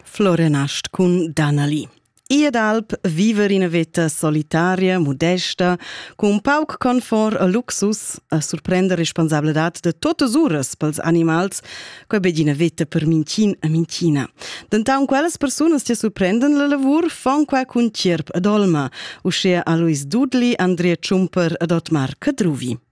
Florenast cun Danali. Ed alp viver ina veta solitaria, modesta, cun un pauc confort e luxus a surprender responsabladad de totas uras pels animals, quei be d'ina veta per mincin e minchina. Dentaunt quellas persunas che surprenden la lavur fon qua cun tgierp ed olma, uschea a Luis Dudli, Andrea Ciumper ed Otmar Cadruvi.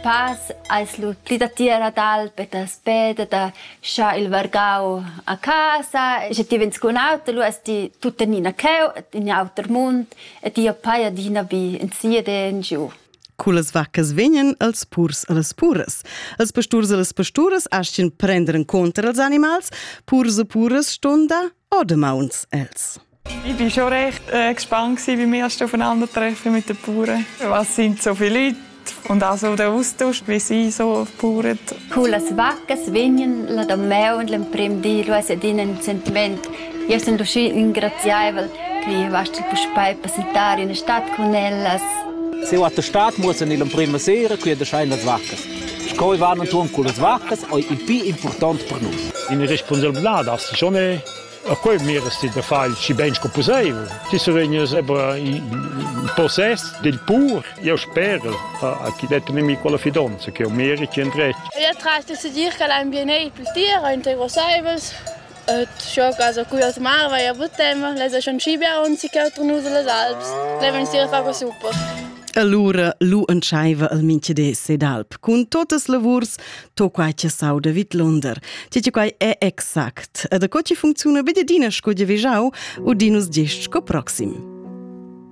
Pas ais lur pli datiera d'alp e daspe da scha il vargau a casa. Sche ti vegns cun auto, lu es ti tuttenina cheu in auter mund e ti appai adina bi in siet e in giu. Cullas vaccas vegnan els purs e las puras. Els pasturs e las pasturas astgan prender en contra els animals, purs e puras ston dar o damauns els. Ich bin schon recht äh, gespannt gewesen, wie wir erst aufeinandertreffen mit den Bauern. Was sind so viele Leute und auch so der Austausch, wie sie so bauern. Coole Wacken, Swingen, la Domeo und l'emprim dir, was è din ein Sentiment. Io sono riuscita ingraziare che vasta puspei passare in stadt con ellas. Se a der Stadt muss in l'emprima sera qui der schein las vaccas. Schoi waren und tun coole Vaccas, oi il più importante per noi. In responsabilità darfst du schon A quei miras ti da far il schi bein sco pusseivel. Ti survegnas ebra in possess dil pur. Eu sper a chi det nemico la fidonza che eu meri ti endretg. Ed atras de dir che l'ambient ei plü tira, integrosaivels. Et scho casa cui ot marva ja buttema, les schon scibia onzi che otro nusa les alps. Le venstira fa co super. Allura lu entscheiva el minchede sedalp cun totas lavurs, to quai che sau de vidlunder. Ti ti quai è exact. E da co ti funcziona be d'ina sco di vejau u dinus gest sco proxim.